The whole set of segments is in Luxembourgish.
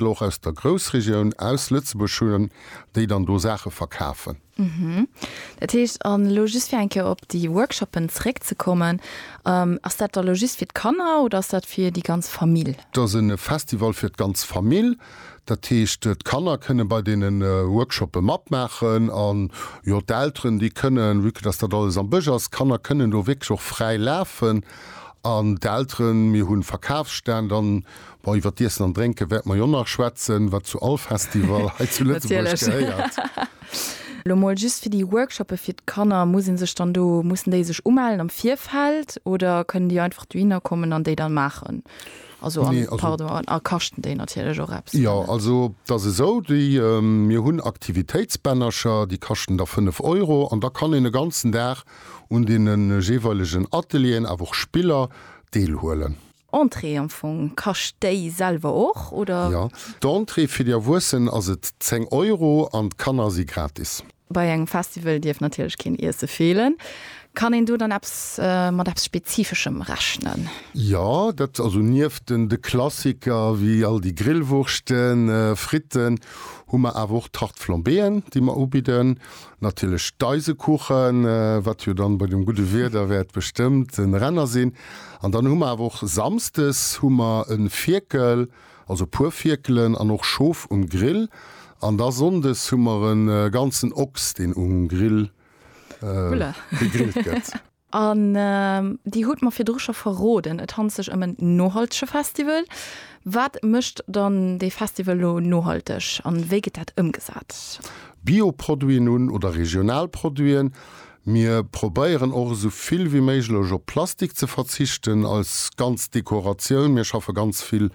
Leit elo och aus der Groussregioun, aus Lëtzebuerg hunn, déi dann do Saache verkafen. Dat heescht, an elo just fir eng Kéier op déi Workshoppen zréckzekommen, ass dat da elo just fir d'Kanner oder ass dat fir déi ganz Famill? Dat ass e Festival fir d'ganz Famill. Dat heescht, d'Kanner kënne bei deene Workshoppe matmaachen an, jo, d'Elteren, déi kënnen, vue que dass dat alles am Bësch ass, d'Kanner kënnen do wierklech och fräi lafen an d'Elteren, mir hu Verkafsstänn, dann Bon, iwwer d'Iessen an Drénke wäerte mer jo nach schwätzen, wat zu all Festival hei zu Lëtzebuerg gehéiert. Elo mol just fir déi Workshoppe fir d'Kanner, muss ee sech dann do, mussen déi sech umellen am Virfeld oder kënnen déi einfach dohinner kommen an déi dann maachen? Also, an, pardon, a kaschten déi natierlech och eppes? Jo, also et ass esou, déi, mir hunn Aktivitéitsbännercher, déi kaschten da 5 Euro an da kann een e ganzen Dag un deene jeeweilegen Atelieren, awer och Spiller deelhuelen. Entrée am Fong, kascht déi selwer och oder? Jo, d'Entrée fir déi Erwuessen ass et 10 Euro an d'Kanner si gratis. Bei engem Festival dierf natierlech keen Iesse feelen. Kann een do dann eppes mat eppes Spezifeschem rechnen? Jo, dat also nieft den de Klassiker wéi all déi Grillwurschten, Fritten, hu mer awer och Tarte Flambéeën, déi mer ubidden. Natierlech d'Eisekuchen, wat jo dann bei dem gudde Wieder wäert bestëmmt en Renner sinn. An dann hu mer awer och Samsdes hu mer en Fierkel, also e puer Fierkelen an och Schof um Grill. An da Sonndes hu mer en ganzen Ochs, deen um Grill gegrillt gëtt. An Dir hutt mer virdru scho verroden, et handelt sech ëm en nohaltege Festival. Wat mécht dann dee Festival elo nohalteg an wéi gëtt dat ëmgesat? Bioproduiten un oder regional Produiten. Mir probéieren och esou vill wéi méiglech op Plastik ze verzichten als ganz Dekoratioun. Mir schaffe ganz vill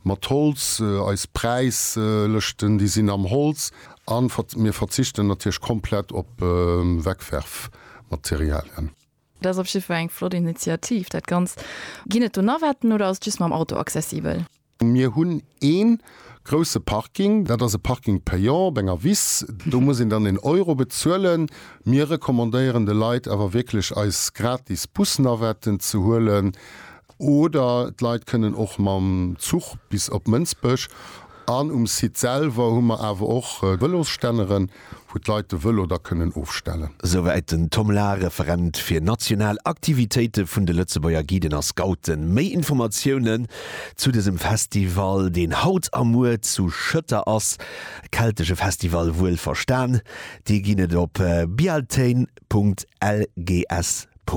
mat Holz, eis Präislëschten déi sinn am Holz. A mir verzichten natierlech komplett op Wegwerfprodukter. Materialien. Dat ass op jidde Fall eng flott Initiativ. Dat Ganzt, ginn et do Navetten oder ass et just mam Auto accessibel? Mir hunn ee grousse Parking. Dat ass e Parking payant op enger Wiss. Do muss een dann een Euro bezuelen. Mir recommandéieren de Leit awer wierklech eis gratis Bus-Navetten ze huelen. Oder d'Leit kënnen och mam Zuch bis op Mënsbech. An um Site selwer hu mer awer och Vëlosstänneren, wou d'Leit de Vëlo da kënnen ofstellen. Souwäit den Tom Lahr, Referent fir national Aktivitéite vun de Lëtzebuerger Guiden a Scouten. Méi Informatiounen zu dësem Festival, deen haut a muer zu Schëtter ass, keltesche Festival wuel verstan, déi ginn et op bialtain.lgs.